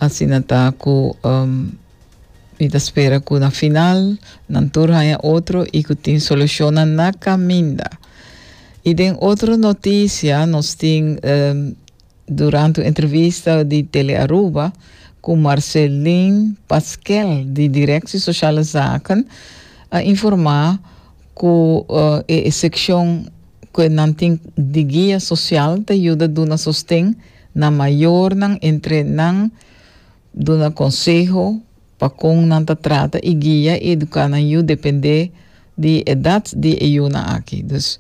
Asina ta ku mi ta spera ku na final nan tur haña otro i ku tin solushonnan na kaminda. I den otro notisia nos tin durante un entrevista di Telearuba ku Marcelin Pasquel di Direksie Sosiale Zaken a informá ku e sekshon ku nan tin di guia sosial ta yuda duna sosten Nan mayornan entre nan duna konseho pa kon nan ta trata i guia i eduká nan yu dependé di edat di e yunan aki. Dus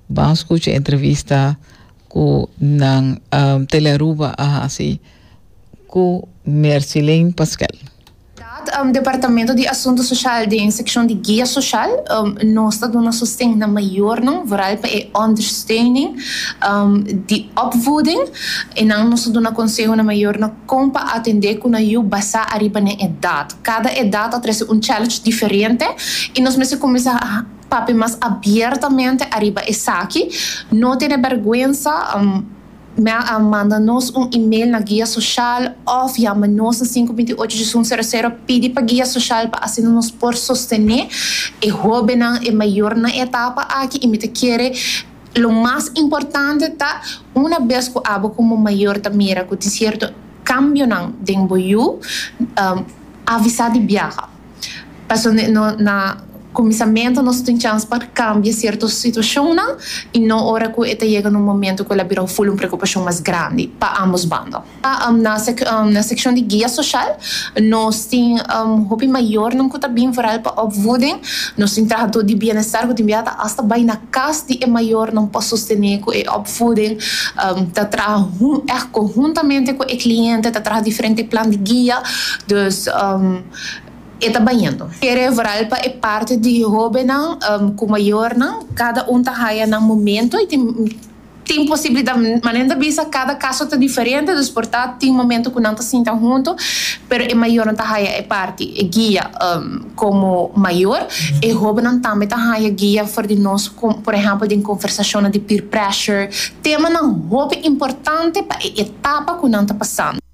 ban skucha e entrevista ku nan Telearuba a hasi ku Mercilene Pasquel. Dat Departamento di Asuntu Soshal den sekshon di Guia Soshal, nos ta duna sosten na mayornan, vooral pa e ondersteuning di opvoeding, e nan nos ta duna konseho na mayornan kon pa atendé ku nan yu basá ariba na e edat. Kada edat a trese un challenge diferente i nos mester kuminsá papia mas abiertamente ariba esaki, no tene bèrgwensa. Mel a manda nos un email na Guia Social òf yama nos na sinku binti ocho disun sero sero pidi pa Guia Social pa asina nos por sostené e hóbennan, e mayornan, e etapa aki i mi ta kere lo mas importante ta una bes ku abo komo mayor ta mira ku tin sierto kambionan den bo yu, avisá di biaha. Pasobra no na kuminsamentu nos tin chans pa kambia sierto situashonnan i no ora ku e ta yega na un momentu ku el a bira un ful un preokupashon mas grandi pa ambos bando. Na na sekshon di guia soshal nos tin hopi mayornan ku ta bin vooral pa opvoeding. Nos tin trahadó di bienestar ku tin biaha ta asta bai na kas di e mayornan pa sostené ku e opvoeding. Ta traha hun, eh konhuntamente ku e kliente ta traha diferente plan di guia. Dus. e ta bañando. Kere vral pa e parti di hóbennan ku mayornan, kada un ta haya nan momento i tin tin posibilidat, manen ta bisa kada kaso ta diferente, dus por ta tin momento ku nan ta sinta huntu, pero e mayornan ta haya e parti, e guia komo mayor, e hóbennan tambe ta haya guia for di nos, por ehèmpel den konversashonnan di peer pressure, temanan hopi importante pa e etapa ku nan ta pasando.